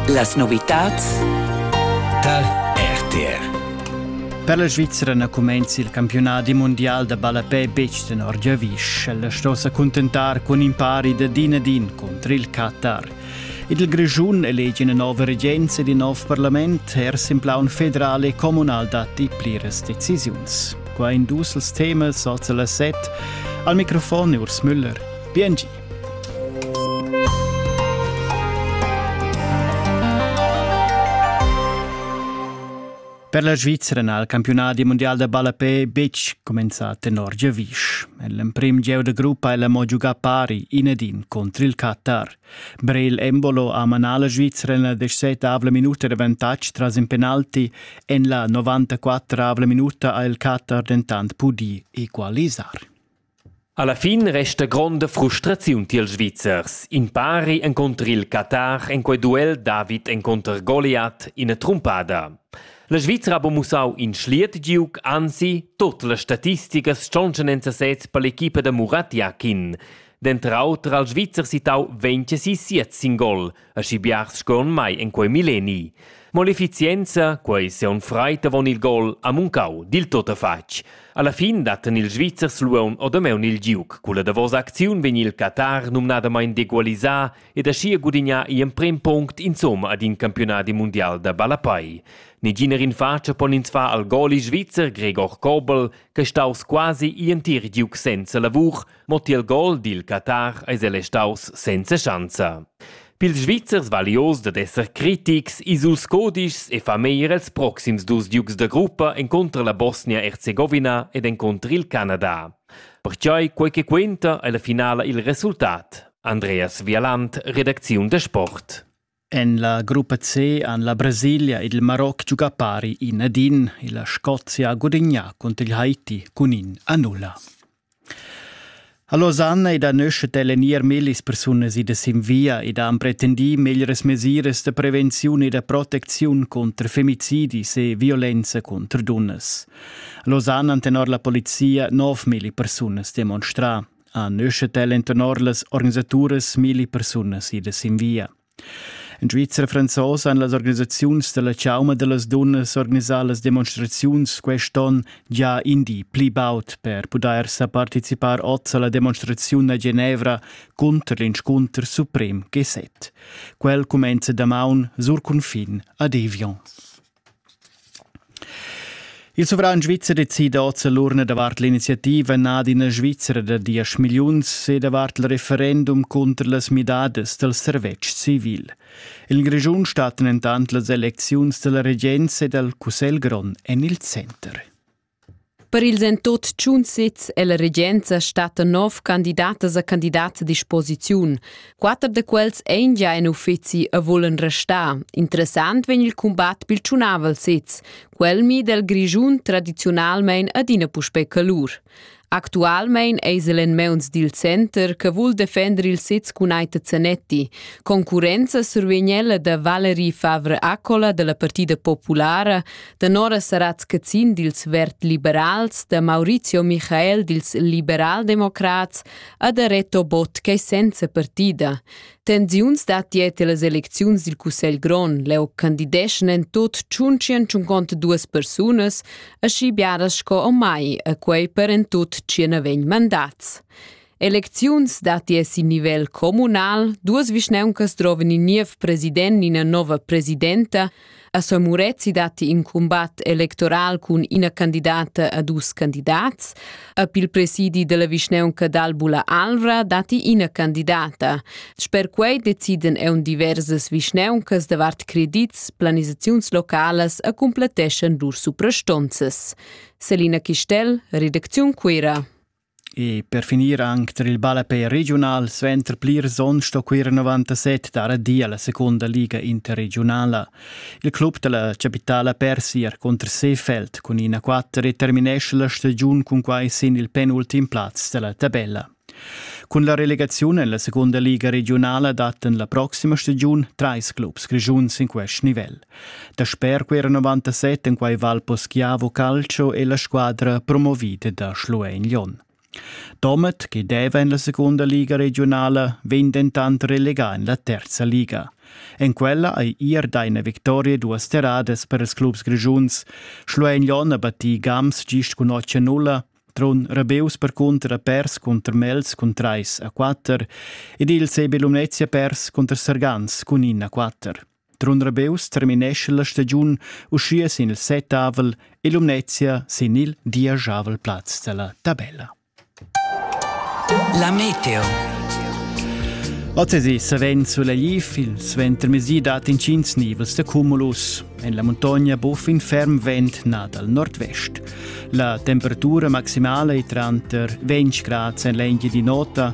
Las novitads tar RTR. Per la Svizzera na cumenza il campiunadi mondial da ballapè betg tenor giavisch. Ella sto sa cuntentar cun in pari da din ad in cunter il Qatar. Il Grischun elegi ina nova regenza ed in nov parlament, er sin plaun federal e communal datti pliras decisiuns. Qua in dus als temas, oz las set. Al microfon Urs Müller. Bien Per la Svizzera n'ha il campiunadi mundial da ballapè betg cumenzà tenor giavisch. L'emprim gieu da gruppa è mo giugà pari in ed in contr il Qatar. Brel Embolo ha manà la Svizzera en la 17 minuta d'avantatg tras in penalti. En la 94 minuta ha il Qatar dentant pudì equalisar. Alla fin resta gronda frustraziun tiels Svizzers. In pari encunter il Qatar en quei duel David encunter Goliath ina trumpada. La Svizra ha buca mussau in schliet giug, anzi, tut las statisticas stontschan en sesez per l'equipa da Murat Yakin. Denter auter ha il Svizzer sittau 26 sin gol, Aschi biars sco en mai en quei milleni. Mo l'efficienza, quei seun freit avon il gol, ha muncau dil tot fatg. Alla fin datten ils Svizzers luon odameun il giuc. Culla davosa acziun vegn il Qatar numnadamain degualisà ed aschia gudignà i emprem punct insomma ad in campionadi mundial da ballapai. Neginer in faccia pon ins far al goli svizzer Gregor Kobel, che staus quasi i entir giuc senza lavur, Mo tiel gol dil Qatar eis el restaus senza schanza. Pils Svizzers vali oz dad esser critics, ils dus codischs e fa meglier els proxims dus giugs da gruppa encontrer la Bosnia-Erzegovina ed encontrer il Canada. Pertgei quei che quenta ei la finala il resultat. Andreas Vialant, redacziun da sport. En la gruppa C han la Brasilia ed il Maroc giugà pari in ad in e la Scozia ha gudagnà cunter il Haiti cun in a nulla. A Losanna ed a Nöschet è l'enir millis persunas idas sin via ed han pretendì meglras mesiras da prevenziun e da protecziun cunter femicidis e violenza cunter dunnas. A Losanna han tenor la polizia nov milli persunas demonstrà. Ha nüschet el intenor las organisaturas milli persunas idas in via. In Svizzera franzosa han las organisaziuns della chauma dellas dunnas organisà las demonstraziuns quest'on già indi pli baud per pudair sa participar oz alla demonstraziun a Genevra cunter l'inscunter suprem G7. Quel cumenza damaun sur cunfin a Deviance. Il suvran svizzer decida oz l'urna davart l'iniziativa Nad ina Svizra da diesch milliuns e davart il referendum cunter las midadas dal servetsch civil. In Grischun stat dentant las elecziuns dalla regenza e dal Cussegl grond en il center. Per ils en tut tschun sezs è la regenza stata nov candidatas a candidats a disposiziun. Quatter da quels ein gia en uffeci e volen restar. Interessant vegn il combat pil tschunavel sez, quel mi del Grischun tradizionalmein adina puspei calur. Actualmein eis el en meuns dil center che vul defender il sez cun Aita Zanetti. Concurrenza survegn ella da Valerie Favre Accola dalla Partida Populara, da Nora Saratz-Cazin dils Vert-Liberals, da Maurizio Michael dils Liberaldemocrats e da Reto Bott ch'ei senza partida. Tensiuns dat dieta las elecziuns dil Cussegl grond. Leu candideschan en tut tschuntschientschuncont duas persunas, aschi biaras sco o mai, a quei per en tut tschien vegn mandats. Elecziuns dati es in nivel communal, duas vischneuncas droven in niev president ina nova presidenta, A Sir Murezi datti in cumbat electoral cun ina candidata a dus candidats. A il presidi della vischneunca d'Albula Alvra datti ina candidata. Sper quei deciden eun diversas vischneuncas davart credits, planisaziuns localas e cumpletteschan lur suprastonzas. Selina Chistel, Redaktion Cuira. E per finir anc tar il ballapè regiunal suenter plirs onns sto Cuira 97 dar adina la secunda liga interregiunala. Il club da la chapitala persi er cunter Seefeld cun ina 4 e terminescha la stagiun cun quai sin il penultim plaz da la tabella. Cun la relegaziun en la secunda liga regiunala dattan la proxima stagiun trais clubs grischuns in quest nivel. Dasper quera 97 en quai Val Poschiavo Calcio è la squadra promovida da Schluein Lyon. Domet, che deva en la seconda liga regionala, vegn dentant relegà en la terza liga. En quella ei ir da ina victoria duas terradas per ils clubs grigiuns. Schluein Lyon ha battì Gams gist cun 8 a 0, Trun Rebeus percunter ha pers cunter Mels cun 3 a 4 ed il CB Lumnezia pers cunter Sargans cun 1 a 4. Trun Rebeus terminescha la stagiun uschia sin il settavel e Lumnezia sin il dieschavel plaz della tabella. La meteo. Ozzesi savens sulegliv, il suentermezdi dat intgins nivels da cumulus. En la montagna buff in ferm vent na dal nord-vest. La temperatura maximala è tranter 20 grad en l'engia di nota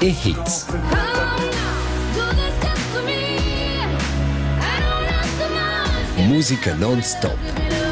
e Hits. Musica non stop.